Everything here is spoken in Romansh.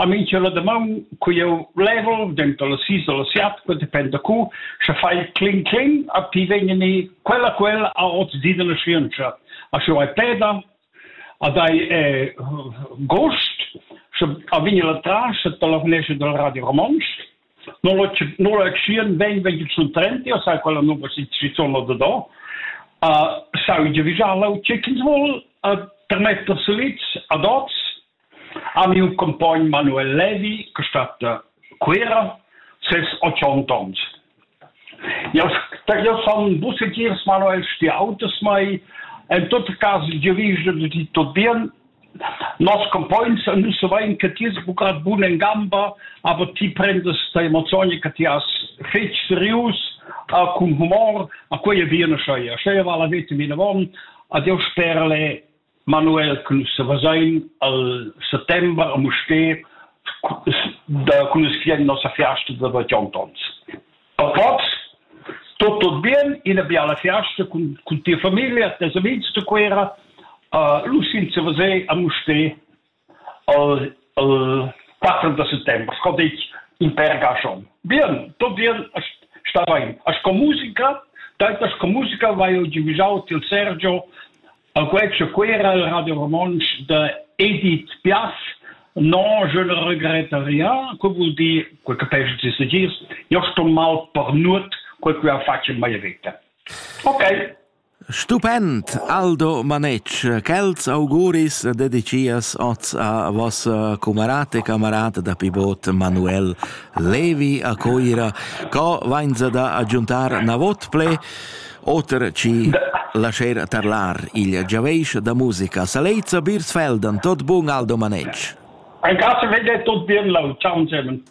A mi cha la damaun cu jeu level, denter las sis e las siat, que dependa cu, sche fai cling cling a ti vegni ni quella quella a ot di della scienza. A sche hai peda, a dai eh, gost, sche a vegni la tras et la finesce del Radio Romans. Non la non la schien ven ven sun trenti, o sai quella nova si si sono da do. A sai già vigiare, o c'è chi vuol, a termetta seliz ad oz, Ha miu compogn Manuel Levi, che stat Cuera, ses otg onns. Jau, jau sun vus segir, Manuel, ti autas mai. En tot cas, jeu vegl da dir tot bien. Nos compogns nus savein che ti es buca bun en gamba, aber ti prendas ta emozioni che ti has fetg serius, cun humor, a quei e bine schei. Schei va la vete minavon, ad jeu sper le Manuel cun sevesain al settember a Mustér da cunuscher nossa fiasta da bagiantons. A Poz tut tut bien, ina biala fiasta cun cun tia famiglia, tes amigs da Cuera. Uh, lu sin sevesair a Mustér al al patrun da ses temp, sco ditg, in pèr gaschom. Bien, tot bien, stavain. A sco musica, tanta sco musica vai eu giuvisau til Sergio a quetsch Cuera al Radio Romontsch de Edith Piaf, Non, je ne regrette rien, que voul dir, que capesch de se dir, io sto mal per nut, que que a faccio mai vita. Ok. Stupend, Aldo Manetsch, quels auguris dedicias oz a vossa cumarata e camarata da pivot Manuel Levi a Coira, co vainsa da agiuntar navot ple, oter ci lascher tarlar il giaveisch da musica. Saleiza Birsfeld, tot bun Aldo Manetsch. Ein Gasse, wenn ihr tot bien laut. Ciao, German.